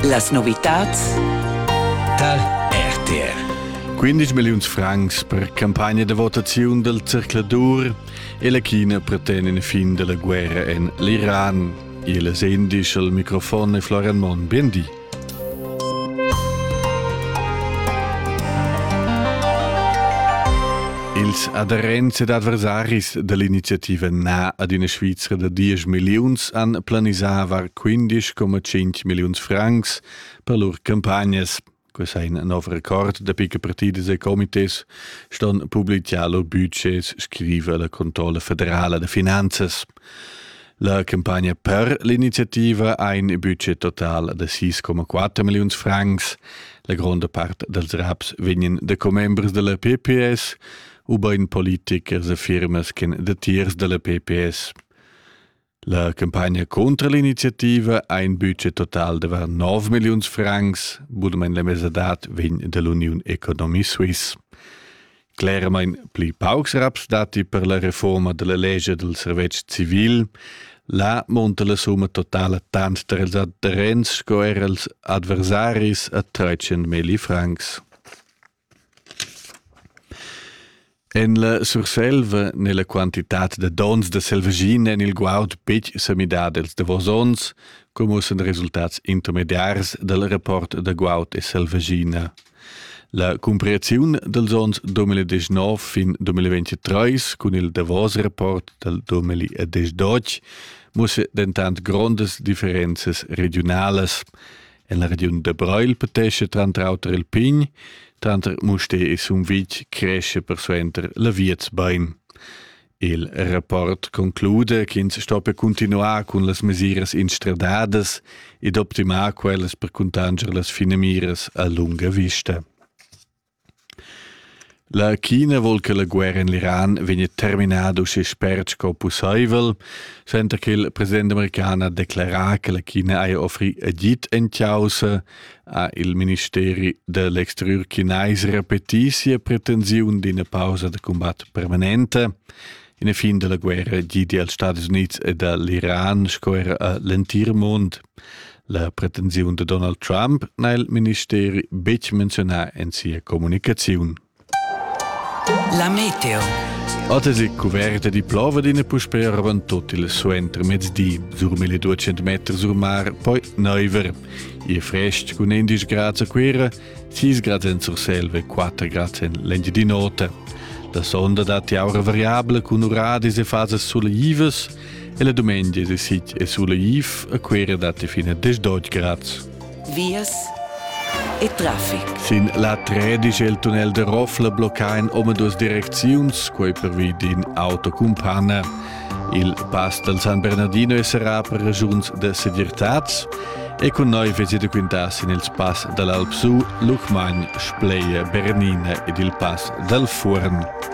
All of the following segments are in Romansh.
Las novitads tar RTR. 15 milliun francs per campagna da votaziun del zercladur e la China preten in fin della guerra en l'Iran. Il sendisch al microfon è Florian Mon. Bien di. Ils aderents ed adversaris dall'iniziativa Na ad ina Svizra da diesch milliuns han planisavar 15,5 milliuns francs per lur campagnas. Questa è un nuovo record da picche partidas e comités ston publiciar lur budgets, scrive la Controlle federale de Finanzes. La campagna per l'iniziativa ha in budget total da 6,4 milliun francs. La gronda part dals raps vegnan da commembers della PPS u ben politikers e firmas che datiers della PPS. La campagna contro l'iniziativa ha in budget total da 9 million francs, budem la mesadad vegn dall'Union Economy Suisse. Clermain pli paucs raps datti per la reforma della legia del servetsch civil. Là monta la summa totala tant dals adherents sco er als adversaris a 300.000 francs. En la Surselva n'è la quantitat de dons de selvaschina en il guaud betg sa midada els davos onns, come ussen resultats intermediars del rapport de guaud e selvaschina. La cumpriaziun dals onns 2019 fin 2023 cun il davos rapport dal 2012 mussa dentant grondas differenzas regiunalas. En la regiun da Breil patescha tranter auter il pign, tranter Musté e Sumvitg cresce persuenter la Vietsbein. Il rapport conclude ch'ins stoppia cuntinuar cun las mesiras instradadas ed optimar quellas per cuntanscher las finamiras a lunga vista. La China vuol che la guerra in l'Iran vegna terminada uschè spert sco pussaivel, senza che il president american ha declarà che la China haja offrì agid en causa ha il ministeri da l'exterior chinais repetì sia pretensiun d'ina pausa da cumbat permanenta. In e fin della guerra gidi als Stati Units e dall'Iran sco era a l'entir mond. La pretensiun de Donald Trump n'ha il ministeri betg menzionà en sia comunicaziun. La meteo. Otas è cuverta di plova d'ina puspè ravan tot il suenter mezdi, sur 1200 meter sur mar, poi neuver. E frest cun 11 grad a Cuira, 6 grad en Surselva e 4 grad en l'Engiadin'Ota. La sonda dat aura variabile cun uradis e fasas suleivas, E la dumengia de sit e sulla Iv a quera date fine a 18 grad. Vias e traffic. Sin la 13 il tunnel de Roffla blocca in om duas direcziuns, quei per vi din autocumpanna. Il pass del San Bernardino sarà per ragiuns de sedirtats e con noi vesi de quintas in il pass dall'Alpsu, Lucmagn, Spleie, Bernina ed il pass dal Furn.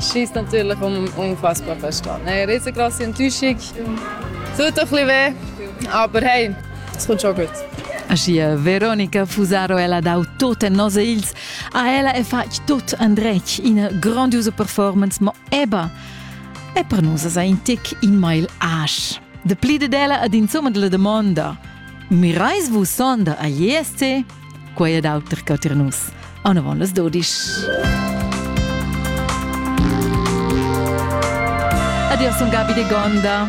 Schießt natürlich um unfassbar verstehen. Hey, riesen krasse Enttäuschung. Tut ein bisschen weh, aber hey, es kommt schon gut. Aschia Veronica Fusaro ella dau tot en nos ils. A ella è fatg tot andretg ina grandiosa performance, ma eba è per nus sa in tic in mail asch. De pli de della ad insomma della domanda. Mirais vus sonda a ISC? quei ed auter che tier nus. Anavon las dodisch. Adios un Gabi de Gonda.